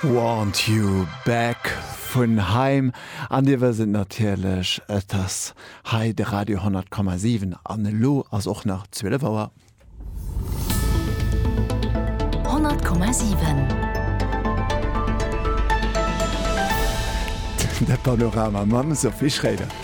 Want You Back vun Haim. An Dir wësst et natierlech, et ass hei de Radio 10,7 an elo ass och nach 12 Auer. 10,7 De Panorama mam Sophie Schréider.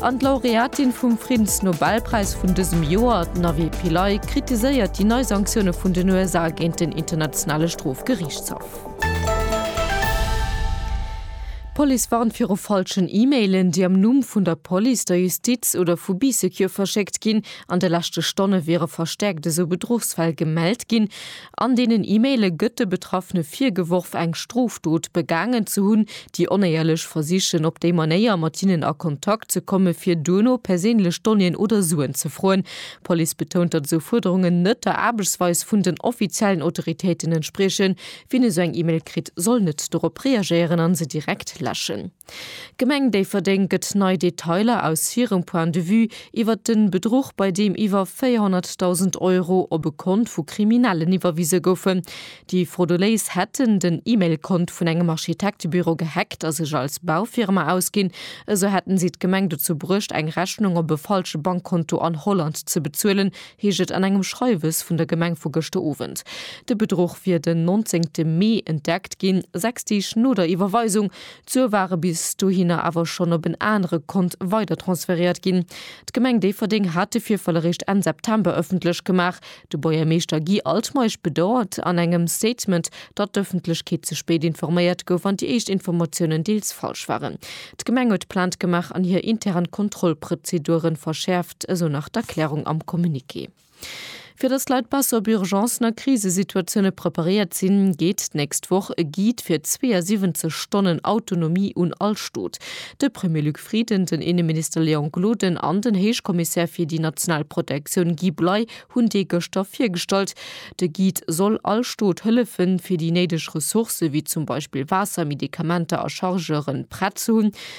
An d'Laureatin vum Friddensnobelpräis vun dësem Joer, d'Navi Pillay, kritiséiert déi nei Sanktioune vun den USA géint den Internationale Strofgeriichtshaff. D'Police warnt viru falschen E-Mailen, déi am Numm vun der Police, der Justiz oder vu BeeSecure verschéckt ginn. An de leschte Stonne wiere verstäerkt esou Bedruchsfäll gemellt ginn. An deenen E-Maile gëtt de Betraffene virgeworf, eng Strofdot begaangen ze hunn. Déi Onéierlech versichen op déi Manéier, mat hinnen a Kontakt ze kommen, fir duerno perséinlech Donnéeën oder Suen ze froen. D'Police betount, datt esou Fuerderungen net der Aarbechtsweis vun den offiziellen Autoritéiten entspriechen. Wien esou eng E-Mail kritt, soll net dorop reagéieren a se direkt läschen. D'Gemeng Déifferdeng gëtt nei Detailer aus hirem Point de vue iwwert de Bedruch, bei deem iwwer 400.000 Euro op e Kont vu Kriminellen iwwerwise goufen. Déi Frodoléis hätten den E-Mail-Kont vun engem Architektebüro gehackt a sech als Baufirma ausginn. Esou hätten si d'Gemeng dozou bruecht, eng Rechnung op e falsche Bankkonto an Holland ze bezuelen, heescht et an engem Schreiwes vun der Gemeng vu gëschter Owend. De Bedruch wier den 19 Mee entdeckt ginn, sechs Deeg no der Iwwerweisung. D'Sue ware bis dohinner awer schonn op en anere Kont weidertransferéiert ginn. D'Gemeng Déifferdeng hat de Virfall eréischt Enn September ëffentlech gemaach. De Buergermeeschter Guy Altmeisch bedauert an engem Statement, datt d'Ëffentlechkeet ze spéit informéiert gouf an déi éischt Informatiounen deels falsch waren. D'Gemeng huet Plainte gemaach an hir intern Kontrollprozedure verschäerft, esou nach d'Erklärung am Communiqué. Fir dass d'Leit besser op Urgencen a Krisesituatioune preparéiert sinn, geet d'nächst Woch e Guide fir 72 Stonnen Autonomie un all Stot. De Premier Luc Frieden, den Inneminister Léon Gloden an den Héichkommissär fir déi national Protektioun Guy Bley hunn dee gëschter virgestallt. De Guide soll all Stot hëllefen, fir déi néideg Ressourcë wéi zum Beispill Waasser, Medikamenter a Chargeuren prett ze hunn,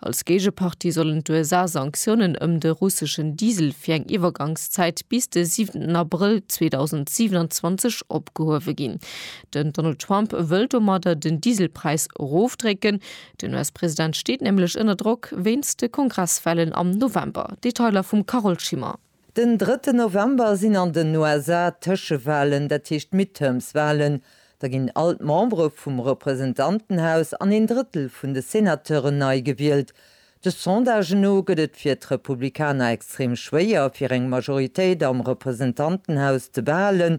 Als Géigepartie sollen d'USA Sanktiounen ëm de russeschen Diesel fir eng Iwwergangszäit bis de siwenten Abrëll 2027 opgehuewe ginn. Den Donald Trump wëll domadder den Dieselpräis erofdrécken. Den US-President steet nämlech ënner Drock wéinst de Kongresswahlen am November. Detailer vum Carole Schimmer. Den drëtten November sinn an den USA d'Tëschewalen, dat heescht d'Midterms-Walen. Da ginn all d'Membere vum Representantenhaus an een Drëttel vun de Senateuren nei gewielt. De Sondagen no gëtt et fir d'Republikaner extrem schwéier, fir eng Majoritéit am Representantenhaus ze behalen.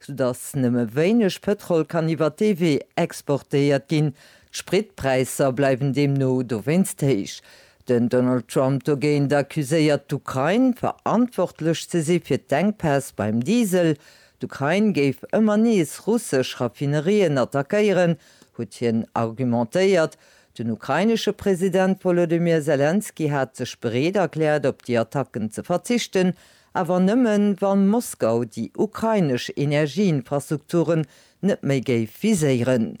soudass nëmme wéineg Pëtrol kann iwwer dee Wee exportéiert ginn. D'Spritpräisser bleiwen deemno dowéinst héich. Den Donald Trump dogéint accuséiert d'Ukrain, verantwortlech ze si fir d'Enkpäss beim Diesel. D'Ukrain géif ëmmer nees russesch Raffinerien attackéieren, huet hien argumentéiert. Den ukrainesche President Wolodymyr Selenskyj hat sech bereet erkläert, op déi Attacken ze verzichten, Awer nëmmen, wann Moskau déi ukrainesch Energieinfrastrukturen net méi géif viséieren.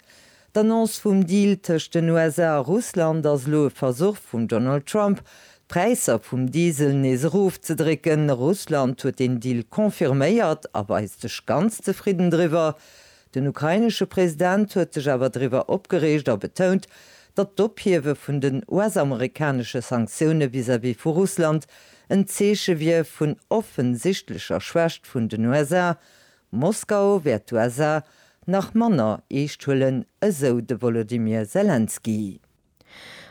D'Annonce vum Deal tëscht den USA a Russland ass elo e Versuch vum Donald Trump, d'Präisser vum Diesel nees erofzedrécken. Russland huet den Deal confirméiert a weist sech ganz zefridden driwwer. Den ukrainesche President huet sech awer driwwer opgereegt a betount, datt d'Ophiewe vun den US-amerikanesche Sanktioune vis-à-vis vu Russland en Zeeche wier vun offensichtlecher Schwächt vun den USA. Moskau wäert d'USA nach manner eescht huelen, esou de Wolodymyr Selenskyj.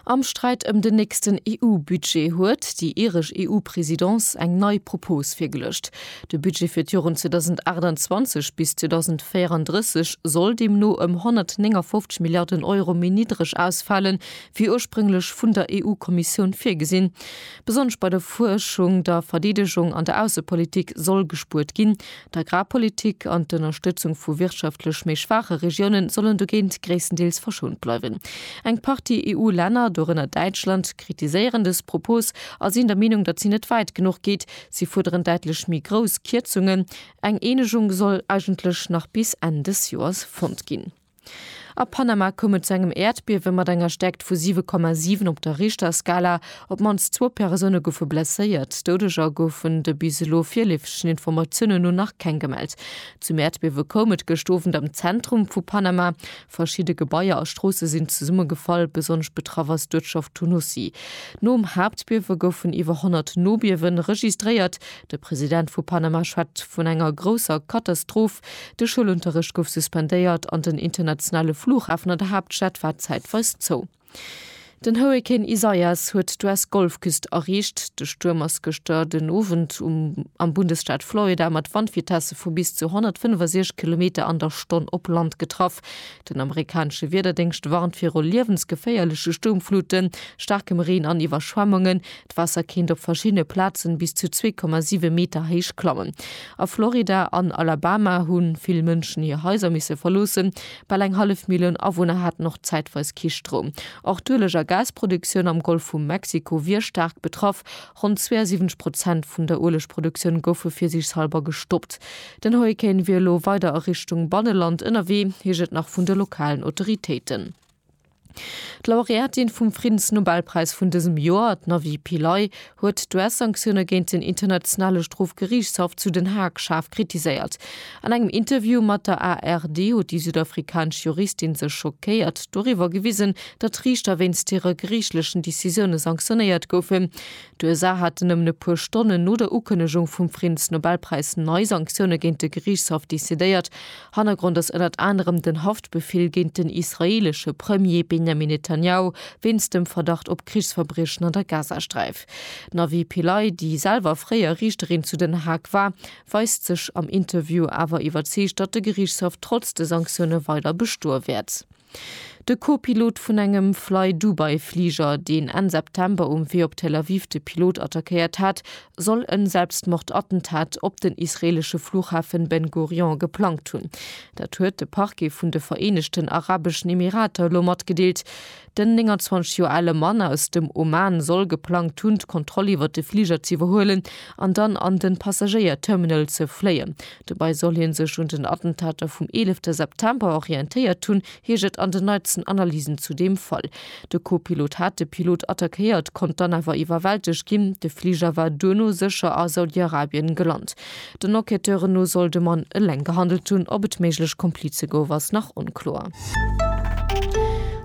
Am Sträit ëm den nächsten EU-Budget huet déi iresch EU-Presidence eng nei Propos virgeluecht. De Budget fir d'Joren 2028 bis 2034 soll deemno ëm 159 Milliarden Euro méi niddreg ausfalen, wéi ursprünglech vun der EU-Kommissioun virgesinn. Besonnesch bei der Fuerschung, der Verdeedegung an der Aussepolitik soll gespuert ginn, D'Agrarpolitik an d'Ënnerstëtzung vu wirtschaftlech méi schwaache Regiounen sollen dogéint gréisstendeels verschount bleiwen. Eng Partie EU-Länner, dorënner Däitschland, kritiséieren dës Propos a sinn der Meenung, datt si net wäit genuch geet. Si fuerderen däitlech méi grouss Kierzungen. Eng Eenegung soll eigentlech nach bis Enn dës Joers fonnt ginn. A Panama koum et zu engem Äerdbiewe mat enger Stäerkt vu 7,7 op der Richterskala. Op d'mannst zwou Persoune goufe blesséiert. Doudeger goufen de bis elo virleefegen Informatiounen no nach keng gemellt. Zum Äerdbiewe koum et gëscht Owend am Zentrum vu Panama. Verschidde Gebaier a Stroosse sinn zesummegefall. Besonnesch betraff ass d'Uertschaft Tunusi. Nom Haaptbiewe goufen iwwer 100 Nobiewe registréiert. De President vu Panama schwätzt vun enger grousser Katastroph, de Schoulunterrecht gouf suspendéiert an den internationale Flughafen an der Haaptstad war zäitweis zou. Den Hurrikan Isaias huet d'US-Golfküst erreecht. De Stuerm ass gëschter den Owend um am Bundesstaat Florida mat Wandvitesse vu bis zu 165 Kilometer an der Stonn op Land getraff. Den amerikanesche Wiederdéngscht warnt viru liewensgeféierleche Stuermfluten, staarkem Reen an Iwwerschwemmungen. D'Waasser kéint op verschiddene Plazen bis zu 2,7 Meter héich klammen. A Florida an Alabama hu vill Mënschen hir Haiser misse verloossen. Bal eng hallef Millioun Awunner haten och zäitweis kee Stroum. Och d'Ueleg a Gasproduktioun am Golf vu Mexiko wier staark betraff. Ronn 72 Prozent vun der Uelegproduktioun goufe fir sech selwer gestoppt. Den Hurrikan wier elo weider a Richtung Banneland ënnerwee, heescht et nach vun de lokalen Autoritéiten. D'Laureatin vum Friddensnobelpräis vun dësem Joer, d'Navi Pillay, huet d'US-Sanktioune géint den Internationale Strofgeriichtshaff zu Den Haag schaarf kritiséiert. An engem Interview mat der ARD huet déi südafrikanesch Juristin sech schockéiert doriwwer gewisen, datt Riichter wéinst hire geriichtlechen Decisioune sanktionéiert goufen. D'USA haten nëmmen e puer Stonnen no der Ukënnegung vum Friddensnobelpräis nei Sanktioune géint de Geriichtshaff decidéiert. Hannergrond ass ënnert anerem den Haftbefill géint den israeelesche Premier Benjamin Netanjahu wéinst dem Verdacht op Krichsverbriechen an der Gazasträif. D'Navi Pillay, déi selwer fréier Riichterin zu Den Haag war, weist sech am Interview awer iwwerzeegt, datt de Geriichtshaff trotz de Sanktioune weider bestoe wäert. De Co-Pilot vun engem Flydubai-Fliger, deen Enn September um Wee op Tel Aviv de Pilot attackéiert hat, soll en Selbstmordattentat op den israeelesche Flughafen Ben Gurion geplangt hunn. Dat huet de Parquet vun de Vereenegten Arabeschen Emirater elo matgedeelt. Den 29 Joer ale Mann aus dem Oman soll geplangt hunn, d'Kontroll iwwer de Fliger z'iwwerhuelen an dann an de Passagéier-Terminal ze fléien, Dobäi soll hie sech un den Attentater vum 11 September orientéiert hunn, heescht et an den neitsten Analysen zu deem Fall. De Co-Pilot hat de Pilot attackéiert, konnt dann awer iwwerwältegt ginn. De Fliger war duerno sécher a Saudi-Arabien gelant. Den Enquêteuren no soll de Mann eleng gehandelt hunn. Ob et méiglech Komplize gouf, ass nach onkloer.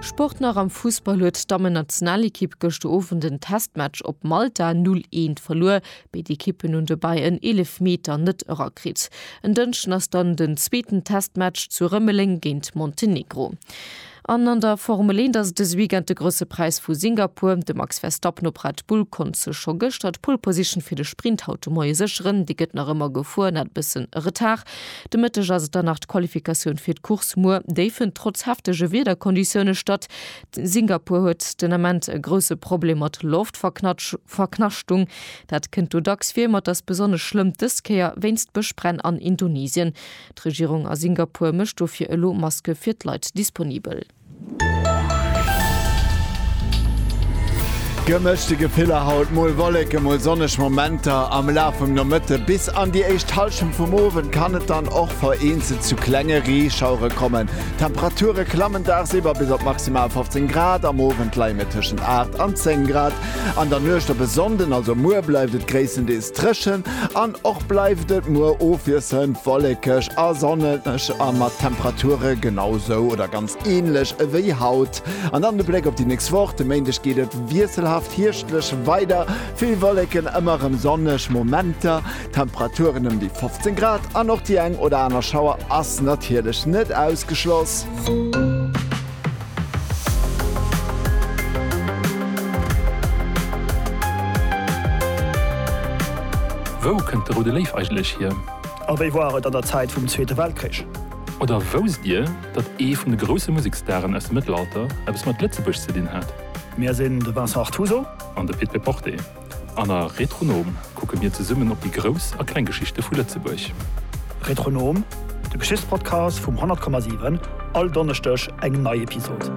Sport nach Am Fussball huet d'Dammen-Nationalekipp gëschter Owend en Testmatch op Malta 0, 1 verluer. Béid Ekippen hunn dobäi en Eelefmeter net erakritt. En Dënschden ass dann den zweeten Testmatch zu Rëmeleng géint Montenegro. An an der Formel 1 ass et dëse Weekend de Grousse Präis vu Singapur. De Max Verstappen op Red Bull konnt sech scho gëschter d'Pole Position fir de Sprint haut de Moie sécheren. Déi gëtt nach ëmmer gefuer, net e bëssen Retard. De Mëtteg ass et dann nach d'Qualifikatioun fir d'Course muer. Déi fënnt trotz heftege Wiederkonditioune statt. Singapur huet den Ament e grousse Problem mat Loftverknaschtung. Dat kënnt do dacks vir, ma et ass besonnesch schlëmm dës Kéier wéinst Bëschbränn an Indonesien. D'Regierung a Singapur mécht dofir elo Maske fir d'Leit disponibel. Gemëschte Gefiller haut, mol Wolleke, mol sonneg Momenter. Am Laf vum Nomëtte bis an déi éischt Hallschent vum Owend kann et dann och vereenzelt zu klenge Reeschauere kommen. D'Temperature klammen dagsiwwer bis op maximal 15 Grad, am Owend leie mir tëschent 8 an 10 Grad. An der Nuecht op e Sonnden, also muer, bleift et gréisstendeels dréchen an och bleift et muer ofwiesselnd wollekeg a sonneg a mat Temperature genau sou oder ganz änlech ewéi haut. An dann de Bléck op déi nächst Woch, de Méindeg geet et wiesselhaft hierschtlech weider, vill Wolleken, ëmmer erëm sonneg Momenter. Temperaturen ëm déi 15 Grad an och déi eng oder aner Schauer ass natierlech net ausgeschloss. Wou kënnt de Roude Léif eigentlech hier? A wéi war et an der Zäit vum Zweete Weltkrich? Oder wousst Dir, datt ee vun de grousse Museksstaren aus dem Mëttelalter eppes mat Lëtzebuerg ze dinn hat? Mir sinn de Vincent Artuso. An de Pit Péporté. An a Retronom kucke mir zesummen op déi grouss a kleng Geschichte vu Lëtzebuerg. Retronom, de Geschichtspodcast vum 100,7, all Donneschdeg eng nei Episod.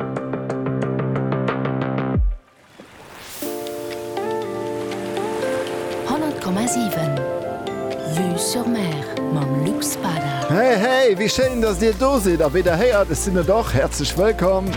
Hey hey, wéi schéin, dass Dir do sidd a wéi Der héiert, ech sinn et och. Häerzlech wëllkomm!